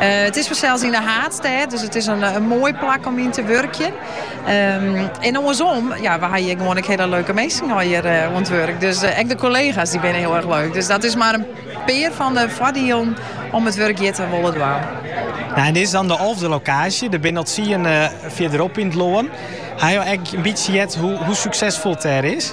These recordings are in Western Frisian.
It is fansels yn de haadstêd, dus it is in moai plak om yn te wurkjen. En oarsom, ja, we ha hjir gewoan ek hiele leuke minsken hjir oan it wurk. Dus ek de kollega's dy binne hiel erg leuk. Dus dat is mar in pear fan de foardielen om it wurk hjir te wolle dwaan. Nou, en dit is dan de alfde lokaasje. Der binne al tsien eh, fierderop yn it lân. Ha jo ek in bytsje heard hoe, hoe suksesfol it dêr is?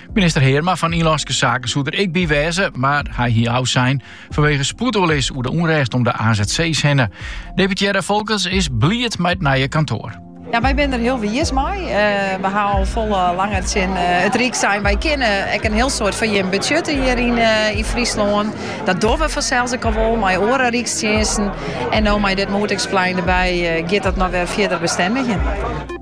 Minister Heerma fan Ynlânske Saken soe der ek by wêze, maar hy hie ôfsein fanwege spoedoerlis oer de ûnrêst om de AZC's hinne. Deputearre Folkerts is bliid mei it nije kantoar. Ja, wy binne der hiel wiis mei. Eh, we ha al folle eh, langer tsjin eh, it Ryk sein. Wy kinne ek in hiel soad foar jim betsjutte hjir yn, yn Fryslân. Dat dogge we fansels ek al wol, mei oare Rykstsjinsten. En no mei dit moetingsplein derby, giet dat noch wer fierder bestendigjen.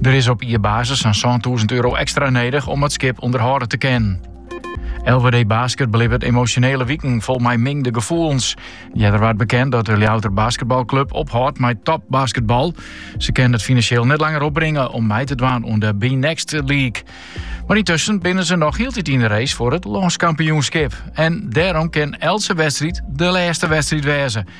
Der is op jierbasis sa'n sântûzen euro ekstra nedich om it skip ûnderhâlde te kinnen. LWD Basket belibbet emosjonele wiken fol mei mingde gefoelens. Earder waard bekend dat de Ljouwerter basketbalclub ophâldt mei topbasketbal. Se kinne it finansjeel net langer opbringe om mei te dwaan oan de BNXT League. Mar yntusken binne se noch hieltyd yn de race foar it lânskampioenskip. En dêrom kin eltse wedstriid de lêste wedstriid wêze.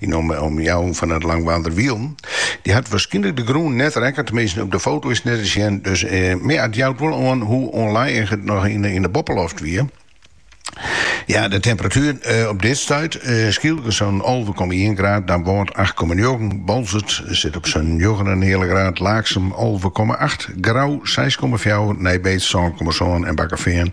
Yn 'e omjouwing fan it Langwarder Wielen. Dy hat waarskynlik de grûn net rekke, teminsten op de foto is net te sjen. Dus ja, it jout wol oan hoe ûnlijig it noch yn de boppeloft wie. Ja, de temperatuer op dit stuit Skylge sa'n alve komma ien graad, Damwâld acht komma njoggen, Boalsert sit op sa'n njoggenenheal graad, Laaksum alve komma acht, Grou seis komma fjouwer, Nij Beets sân komma sân en Bakkefean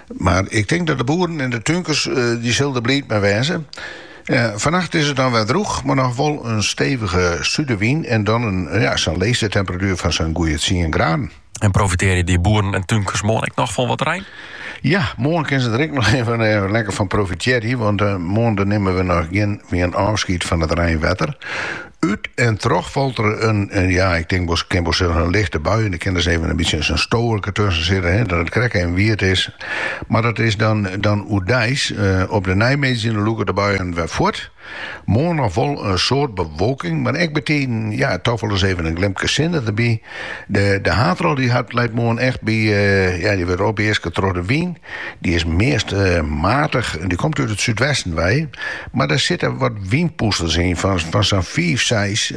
Mar ik tink dat de boeren en de túnkers dy sille der bliid mei wêze. Fannacht is it dan wer drûch, mar noch wol in stevige sudewyn en dan in ja, sa'n leechste temperatuer fan sa'n goeie tsien graden. En profitearje dy boeren en túnkers moarn ek noch fan wat rein? Ja, moarn kinne se der ek noch even eh, lekker fan profitearje, want eh, moarn dan nimme we noch gjin ôfschiet fan it reinwetter. Ut en troch falt der in, eh, ja, ik tink wol, kin wol sizze in lichte bui. Der kin dus even in bytsje in stoerke tusken sitte, hè, dat it krekt even wiet is. Mar dat is dan, dan oerdeis. Eh, op de neimiddei dan lûke de buien wer fuort. Moarn noch wol in soad bewolking, mar ek betiden, ja, toch wol ris even in glimke sinne derby. De, de haadrol die hat, leit moarn echt by, eh, ja, die wurdt opeaske troch de wyn. Die is meast, eh, maatich, die komt út it súdwesten wei. Mar der sitte wat wynpûsters yn fan sa'n fiif, seis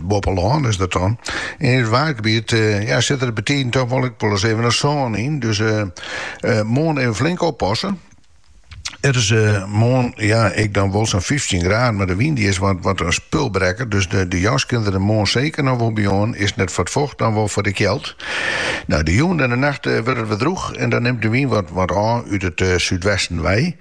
boppe lân is dat dan. En yn it Waadgebiet sitte der betiden toch wol ek wolris even in sân yn. Dus moarn even flink oppasse. It is moarn ek dan wol sa'n fyftjin graden, mar de wyn dy is wat in spulbrekker. Dus de jas kin der moarn seker noch wol by oan. Is net foar it focht, dan wol foar de kjeld. De jûn en de nacht wurdt it wer drûch en dan nimt de wyn wat ôf út it súdwesten wei.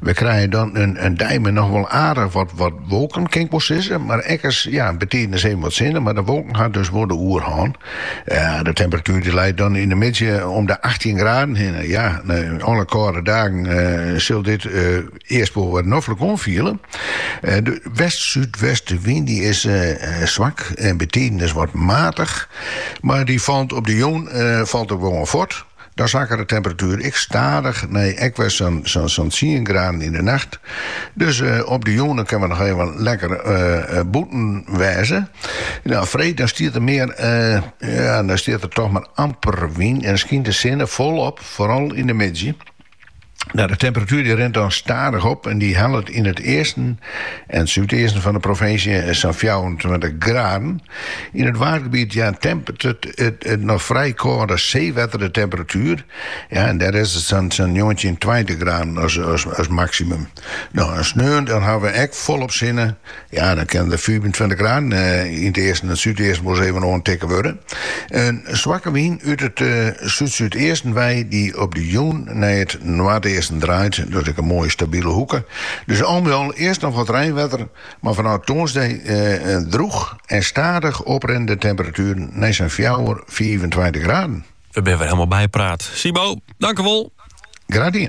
We krije dan in dei mei noch wol aardich wat wolken, kin ik wol sizze, mar ek ris ja betiidens even wat sinne, mar de wolken ha dus wol de oerhân. De temperatuer leit dan yn de middei om de achttjin graden hinne. Ja, nei alle kâlde dagen sil dit earst wol wat noflik oanfiele. De west-súdwestewyn is swak en betiidens wat matich, mar dy falt op de jûn falt er wol fuort. Dan sakket de temperatuer ek stadich nei ek wer ris sa'n tsien graden yn de nacht. Dus op de jûn kinne we noch even lekker bûten wêze. Nou, freed dan stiet der mar, ja, dan stiet der toch mar amper wyn en skynt de sinne folop, foaral yn de middei. Nou, de temperatuer die rint dan stadich op en die hellet yn it easten en súdeasten fan de provinsje sa'n 24 graden. Yn it waadgebiet ja, tempert it, it, it noch frij kâlde seewetter de temperatuer. Ja, en dêr is it sa'n 19, 20 graden as, as, as maksimum. No, en sneon dan hawwe we ek folop sinne. Ja, dan kinne de fiifentweintich graden eh, yn it easten en súdeasten wol ris even oantikke wurde. In swakke wyn út it uh, eh, súd-súdeasten wei, die op de jûn nei it noardeasten draait. Dat is ek in moaie stabile hoeke. Dus al mei al earst noch wat reinwetter, mar fanôf tongersdag eh, eh, droech en stadich oprinnende temperatueren nei sa'n 4, 25 graden. We binne wer hielemaal bypraat. Simo, tankewol. Graach